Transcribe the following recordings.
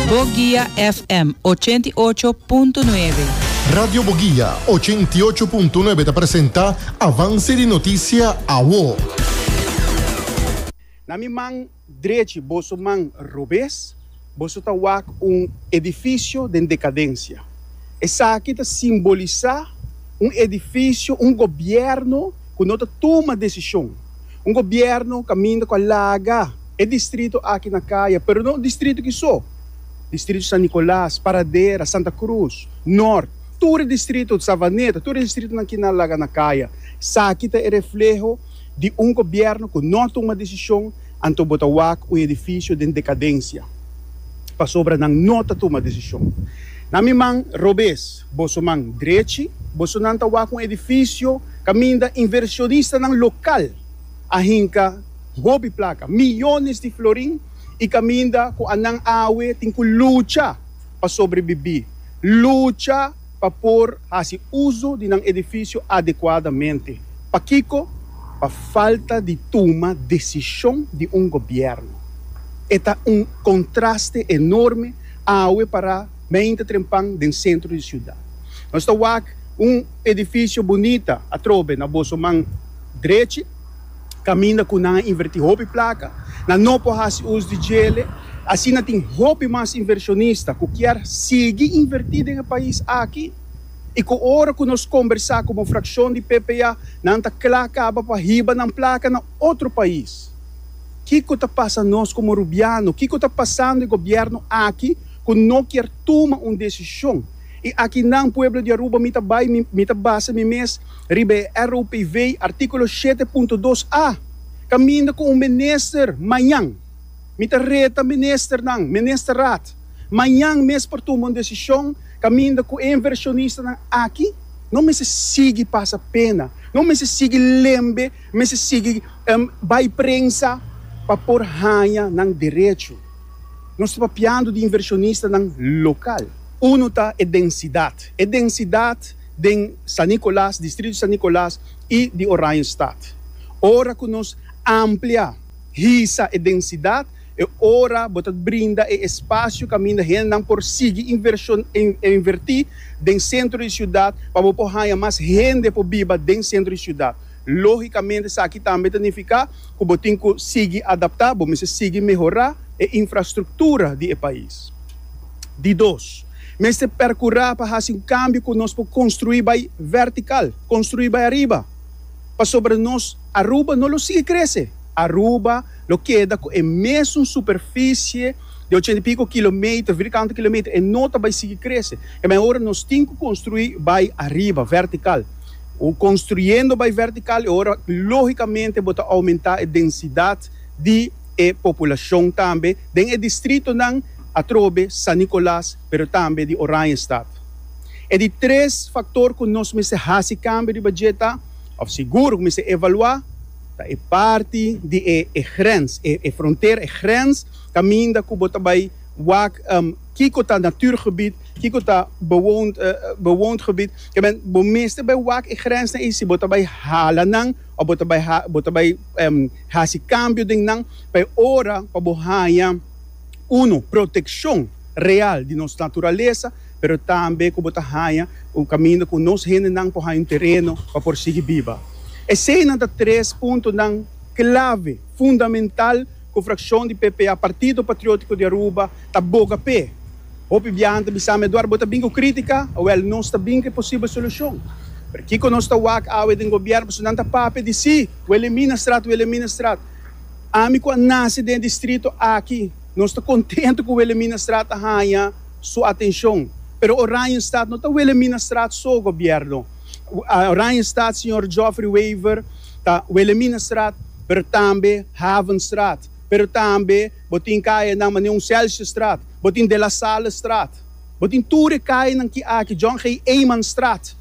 Boguia FM ochenta i ocho punto nuebe. Radio Boguia ochenta i ocho punto nuebe ta presenta Avance di Noticia Awo. Na mi man drechi boso man robes, boso ta wak un edifisio den dekadensia. Esaki ta simbolisá un edifisio, un gobièrnu ku no ta tuma desishon, un gobièrnu kaminda ku a laga. E distrito aki na Caya, pero no distrito ki so, distrito San Nicolas, Paradera, Santa Cruz, Nort, tur e distrito, Savaneta, tur e distritonan ki na laga na Caya. Saki ta e refleho di un gobierno cu no a tuma decision, anto bo ta wak un edificio den decadencia pasobra nan no ta tuma decision. Na mi man robes, boso man drechi, bosonan ta wak un edificio caminda inversionistanan local. a hinka hopi plaka, miyones di florin i kaminda ku anan awe tin ku lucha pa sobrebibí, lucha pa por hasi uso di nan edifisio adekuadamente. Pakiko? Pa falta di tuma desishon di un gobièrnu. E ta un kontraste enorme awe pará beinta trempan den sentro di siudat. Nos ta wak un edifisio bunita atrobe na boso man. drechi, kaminda ku nan a invertí hopi plaka, nan no por hasi us di djele. Asina tin hopi mas invershonista ku kier sigui invertí den e pais aki i ku ora ku nos kombersá komo frakshon di PPA nan ta kla kaba pa hiba nan plaka na otro pais. Kiko ta pasa nos komo Rubiano? Kiko ta pasando e gobièrnu aki ku no kier tuma un desishon? I aki nan, pueblo di Aruba, mi ta bai, mi ta basa mi mes. riba e ROPV, artíkulo shete punto dos a, kaminda ku un minister mañan. Mi ta reta ministernan, Ministerraad, mañan mes por tuma un desishon kaminda ku e invershonistanan aki no mester sigui pasa pena, no mester sigui lembe, mester sigui bai prensa pa por haña nan derecho. Nos ta papiando di invershonistanan lokal. Unu ta e densidat. E densidat. den San Nicolas, distrito San Nicolas y di Oranjestad. Ora cu nos amplia, hisa, e densidad, e ora bo ta brinda e espacio caminda hendenan por sigui inverti den centro di ciudad pa bo por haya mas hende por biba den centro di ciudad. Logicamente esaki tambe ta nifica cu bo tin cu sigui adapta, bo mester sigui mehora e infrastructura di e pais. Di dos. mester perkurá pa hasi un kambio ku nos por konstruí bai vertikal, konstruí bai ariba, pasobra nos Aruba no lo sigui krese. Aruba lo keda ku e mesun superfisie di ochenta i piko kilometer, vir kantu kilometer, e no ta bai sigui krese. E mehor nos tin ku konstruí bai ariba, vertikal. Konstruyendo bai vertikal e ora lógikamente bo ta oumentá e densidat di e populashon tambe den e distritonan, atrobe San Nicolas pero tambe di Oranjestad. E di tres factor cu nos mester haci cambio riba dje ta, of sigur cu mester evalua, ta e parti di e e grens, e e frontera, e grens caminda cu bo ta bay wak kico ta natuurgebied, kico ta bewoond bewoond gebied. Kebben bo mester bay wak e grensnan ey si bo ta bay hala nan of bo ta bay ha bo ta bay haci cambio den nan pa e ora pa bo haya. Uno, protekshon real di nos naturalesa, pero tambe ku bo ta haña un kaminda ku nos hendenan por haña un tereno pa por sigui biba. Eseinan ta tres puntonan klave, fundamental ku frakshon di PPA, Partido Patriótiko di Aruba, ta boga p'e. Hopi biaha nan ta bisam'e, Eduardo, bo ta bin ku krítika? Wèl, nos ta bin ku e posibel solushon. Pero kiko nos ta wak awe den gobièrnu? Pasobra nan ta papia di si, Welimina Strat, Welimina Strat. Ami ku a nase den distrito aki, nos ta kontentu ku Wilhelminastraat a haña su atenshon. Pero Oranjestad no ta Wilhelminastraat so, gobièrnu. Oranjestad, señor Geoffrey Wever, ta Wilhelminastraat, pero tambe Havenstraat. Pero tambe bo tin kayanan manera un Selsjestraat, bo tin De La Sallestraat. Bo tin tur e kayanan ki aki, John G. Eijmanstraat.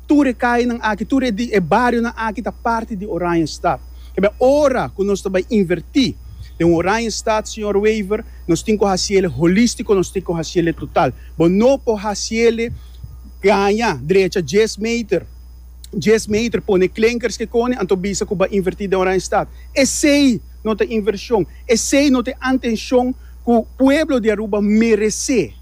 Tur e kainan aki, tur e di e barionan aki ta parti di Oranjestad. Kibè ora ku nos ta bai invertí den Oranjestad, señor Wever, nos tin ku hasiele holístiko, nos tin ku hasiele total. Bo no por hasiele gaña drecha dies meter, dies meter pone klenkers ke kone, anto bisa ku bo a invertí den Oranjestad. Esei no ta invershon, esei no ta e antenshon ku pueblo di Aruba meresé.